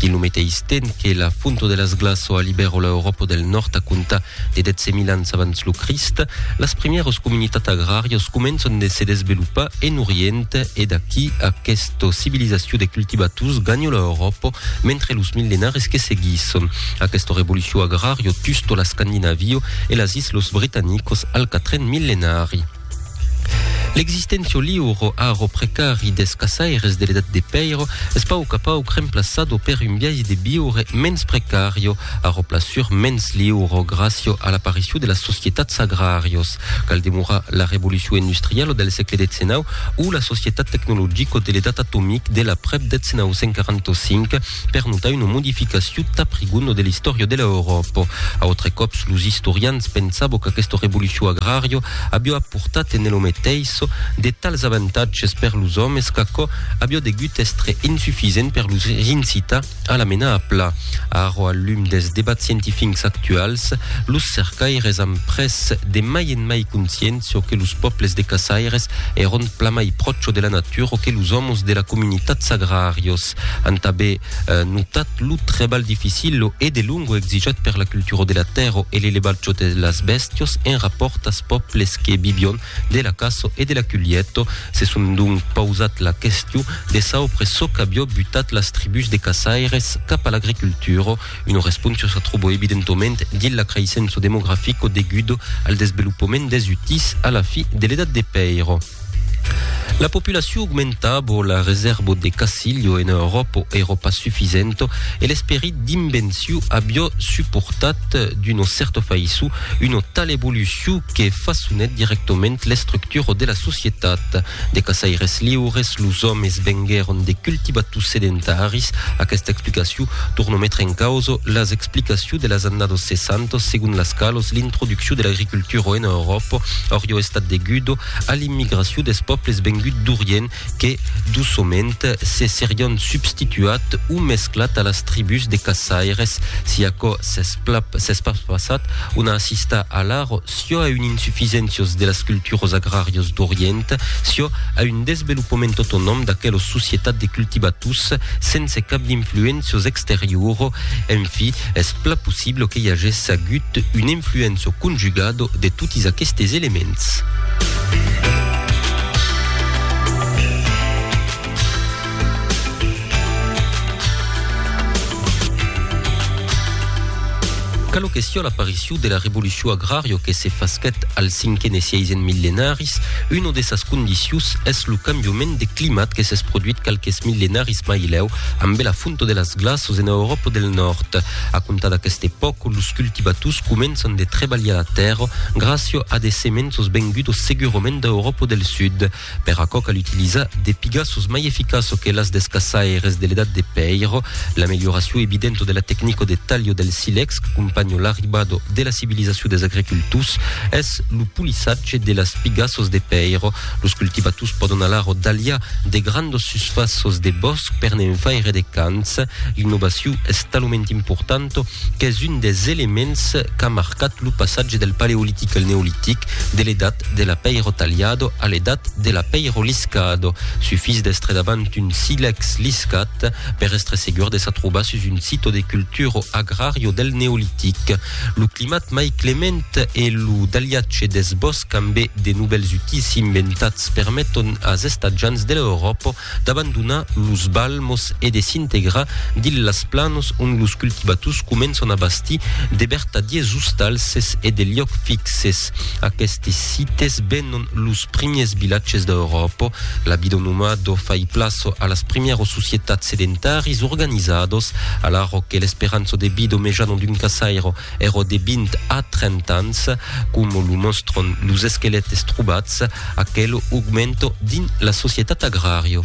Dins lo meteis temps que la Fonto de las Glas o a Libèro l'Euròpa del Nòrd a comptar de 10.000 ans abans lo Crist, las primièras comunitats agràrias començan de se desvelopar en Orient e d'aquí aquesta civilizacion de cultivators ganha l'Euròpa mentre los millenaris que seguisson aquesta revolucion agrària tusto l'Escandinavio e las Islòs Britanicos al quatren millenari. L'existentio liuro, aro precari des caçaires de l'edat de pèiro, es pauc a pauc remplaçado per un biais de viure mens precario, aro plasur mens liuro gràcio a l'aparicion de las societats agràrios. Cal demorar la revolucion industrialo del sègle xix o la societat tecnologico de l'edat atomic de l'aprèp 1945, per notar una modificacion tap rigona de l'istòria de l'Euròpa. A autre còps, los istorians pensabo qu'aquesta revolucion agraria aviá aportat en elo meteis de tals avantatges per los òmes qu'aquò aviá degut èstre insufisent per los incitar a la menar a pla. Ara, al lum dels debats scientifics actuals, los cercaires an pres de mai en mai consciéncia que los pòbles de caçaires èron plamai pròcho de la natura que los òmes de la comunitats agràrios. Cat an tanben notat lo trebalh dificil e de longo exijat per la cultura de la tèrra e l'elevatge de las bèstias en rapòrt as pòbles que vivion de la caça e de la culheta. Se son donc pausat la question de saupre çò qu'avió butat las tribús de caçaires cap a l'agricultura. Una responsa se tròbo evidentoment dins la creissença demografico degudo al desvelopament des utís a la fi de l'edat de pèiro. La populacion augmentabo, la resèrbo de casilho ena Euròpo ero pas sufisento e l'esperit d'invenciu avió suportat d'uno cèrto faissó una tala evolucion que fassonet directament l'estructura de la societat. De caçaires liures, los òmes venguèron de cultivators sedentaris. Aquesta explicacion tornò metre en causa las explicacions de las annados 60, segon las qualas l'introduccion de l'agricultura ena Euròpa aurió estat deguda a l'immigracion des pòbles venguts d'Orient que, doçament, se serián substituat o mesclat a las tribús de caçaires. Si aquò s'es pas passat, on a assistat alara çò a un insufisèncios de las culturos agràrios d'Orient, çò a un desvelopament autonòm d'aquelos societat de cultivators sense cap d'influencios exterioro, en fi, es pla possible que i agèsse agut un influencio conjugado de totis aquestes elements. Calo que sia l'apariciu de la revoluciu agrario que se fasquet al cinquen e siaisen millenaris, uno de sas condicius es lo cambiument de climat que s'es produit qualques millenaris mai lèu ambe la fonto de las glaços en Euròpa del Nòrd. A comptar d'aqueste pòc, los cultivators començan de trebalhar la tèrra gràcia a de semenços vengudos segurament d'Euròpa del Sud. Per aquò cal utilizar de pigas sos mai eficaço que las des caçaires de l'edat de pèiro, l'amelioracion evidento de la tecnico de talho del silex qu'acompanho l'arribado de la civilizacion des agricultors es lo polissatge de las pigasos de pèiro. Los cultivators pòdon alara dalhar de grandos susfaços de bòsc per ne'n faire de cants. L'innovacion es talament importanta qu'es un des elements qu'a marcat lo passatge del paleolitic al neolitic, de l'edat l'edat de l'apeiro talhado a l'edat de l'apeiro liscado. Sufís d'estre davant un silèx liscat per estre segur de s'atrobar sus un sito de culturo agrario del Neolitic. Lo climat mai clement e lo dalhatge deth bòsc ambé de novèls utís inventats permeton as estatjants de l'Euròpo d'abandonar los balmos e de s'integrar dins las planos ont los cultivators començan a bastir de vertadiers ostalses e de liòcs fixes. Aquestes sites venon los primiers vilatges d'Euròpa. La vida nomado fai plaça a las primièros societats sedentaris organizados, alara que l'esperança de vida mejan d'un caçaire Ero de 20 a 30 ans, com lo mòstron los esquelètes trobats, aquelo augmento dins la societat agràrio.